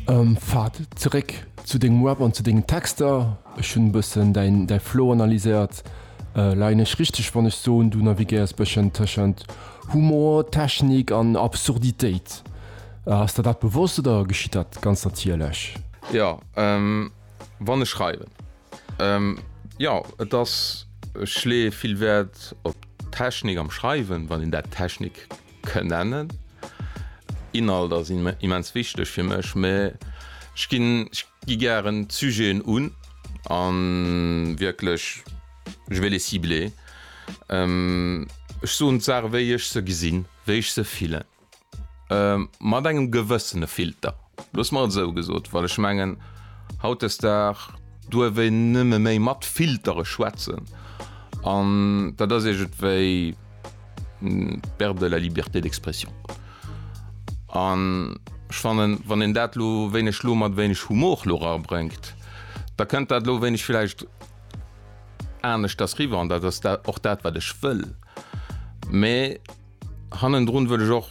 Ähm, Fahd, zeréck zu dengem Rap an zu dengen Texter. Ech hunn e bëssen däin, däi Flow analyséiert. Leien ech richteg, wann ech soen, du navigéiers e bëschen tëschent Humor, Technik an Absurditéit? Ass der dat bewosst oder geschitt dat ganz natierlech? Jo, wann ech schreiwen, jo. Et ass, ech leeë vill Wäert op d'Technik am Schreiwen, wann een dat Technik. kënnen. Inhalt ass immens wichteg fir mech, mä ech ginn, ech gi gären d'Sujeten un a wierklech, je vais les cibler. Ech soen d'Saache wéi ech se gesinn, wéi ech se fillen, mat engem gewëssene Filter, loosse mer et esou gesot, well ech mengen, hautdesdag duerf een nëmme méi mat Filtere schwätzen an dat ass iergendwéi. Perte de la liberté d'expression. An ech fannen, wann een dat elo, wéi ech elo, mat wéineg Humor elo erabréngt, da kënnt dat elo wéineg villäicht aneschters riwwer. An dat ass och dat, wat ech wëll. Mä hannendrun wëll ech och.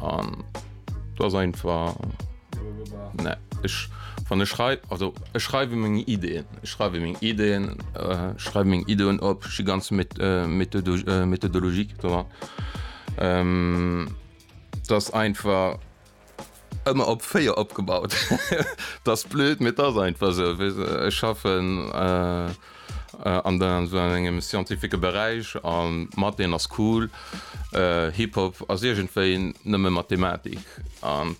An do ass einfach ne ech wann ech schreiw also ech schreiwe meng Ideen, ech schreiwe meng Ideen, äh, schreiwe meng Ideen op, ech gi ganz met äh, Methodo äh, Methodologie dran. Ähm, dat ass einfach Ëmmer op 4 opgebaut. T'ass blöd, mee t'ass einfach esou. Weess de, ech schaffen an esou engem scientifique Beräich an d'Matheen ass cool. Hip-Hop ass iergendwéi nëmme Mathematik an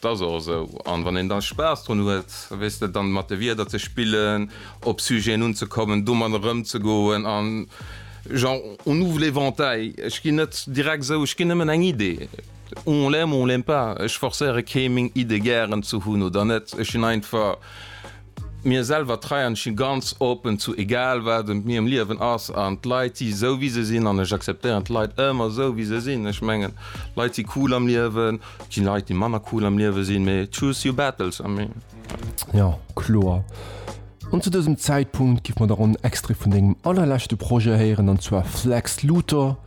t'ass och esou. An wann een da Spaass drun huet, weess de, dann mat de Wierder ze spillen, op Sujeten unzekommen, domadder erëmzegoen an genre on ouvre l'éventail. Ech ginn net direkt esou, ech ginn nëmmen eng Idee. On l'aime, on l'aime pas, ech forcéiere kee meng Iddë gären ze hunn oder net, ech sinn einfach mir selwer trei an ech si ganz open zu egal wat ëm mir am Liewen ass an d'Leit si sou wéi se sinn an ech acceptéieren d'Leit ëmmer sou wéi se sinn. Ech mengen Leit si cool am Liewen, et gi Leit déi manner cool am Liewe sinn, mee choose your battles a mee. Jo, kloer. An zu dësem Zäitpunkt giff mer da ronn en Extrait vun dengem allerleschte Projet héieren an zwar Flex Luthor.